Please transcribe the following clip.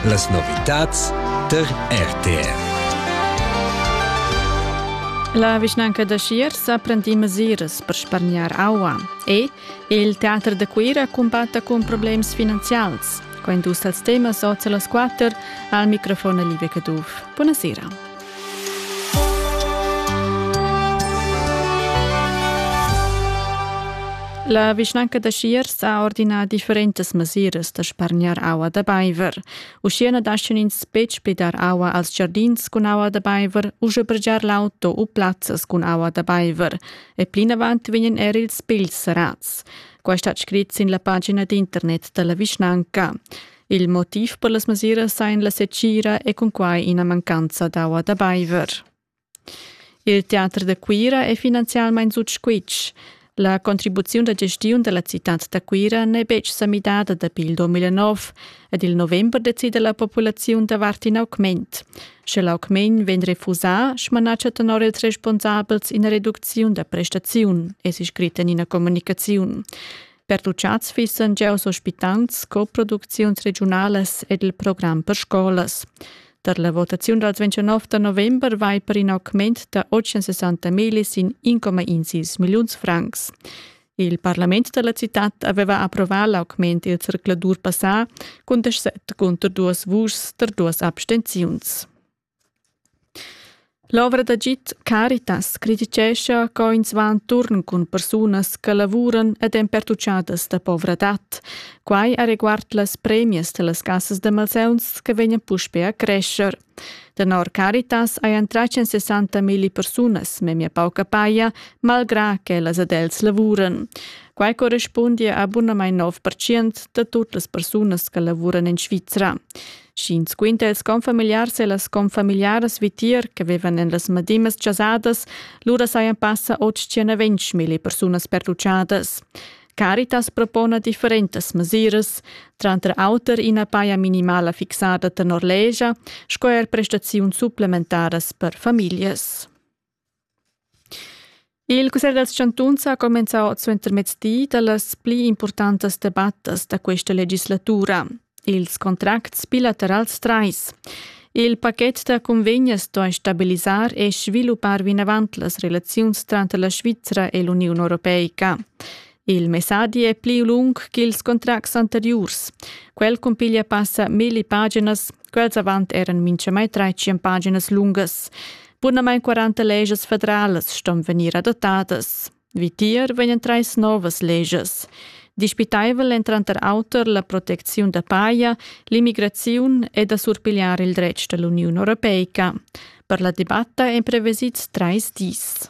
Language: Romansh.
Las novitads tar RTR. La vischnanca da Schier sa prendì mesiras per spargnar aua e il teater da Cuira cumbatta cun problems finanzials. Quai dus dals temas oz a las quatter al microfon Livia Caduff. Buonasera. La vischnanca da Schiers ha ordinà differentas mesiras da spargnar aua da baiver. Uschia na daschian ins betg be dar aua als giardins cun aua da baiver u sbrgiar l'auto u plazzas cun aua da baiver. E plinavant vegnan er ils pigls serrads. Quai stat scrit sin la pagina d'internet da la vischnanca. Il motiv per las mesiras ein la secira e cunquai ina mancanza d'aua da beiver. Il teater da Cuira è finanzialmein sut squitsch. La contribuziun da gestiun della citad da Cuira n'è betg sa midada dapi il 2009 ed il november decida la populaziun davart in augment. Sche l'augment vegn refusà, smanatscha tenor ils responsabels ina reducziun da prestaziun, es scrit en ina communicaziun. Pertuchads fissan giaus ospitants sco producziuns regiunalas ed il program per scolas. Per la votaziun dals 29 da november vai per in augment da 860 milis in 1,16 milliuns francs. Il parlament della città aveva approvato l'augment il zercladur passà con 17 contro 2 vuschs per 2 abstenziuns. L'ovra d'agid Caritas crititgescha co ins va enturn cun persunas che lavuran ed èn pertuchadas da povradad. Quai areguard las premias da las cassas da malsauns che vegnan puspè a crescher. Tenor Caritas hajan tratg en 60 milli persunas memia pauca paja, malgrà ch'ellas ed els lavuran. Quai correspundia a bunamain 9% da tut las persunas che lavuran en Svizra. Sch'ins quinta ils confamiliars e las confamiliaras vitier che vevan en las madimas chasadas, lura sajan passa 820 mila persunas pertuchadas. Caritas propona differentas mesiras, tranter auter ina paja minimala fixada tenor legia sco er prestaziuns supplementaras per famiglias. Il cussegl dals chantuns ha cumenzà suentermezdi da las pli impurtantas debattas da questa legislatura, ils contracts bilaterals trais. Il pachet da cunvegnas sto stabilisar e sviluppar vinavant las relaziuns tranter la Svizra e l'Uniun europeica. Il messadi è pli lung ch'ils contracts anteriurs. Quel cumpiglia passa milli paginas Quels avant eran minchamai trais tschient paginas lungas. Bunamain 40 legias federalas ston vegnir adotadas. Vitier vegnan trais novas legias. Dispitaivel èn tranter auter la protecziun da paja, l'immigraziun e da surpigliar il dretg da l'Uniun europeica. Per la debatta èn prevesids trais dis.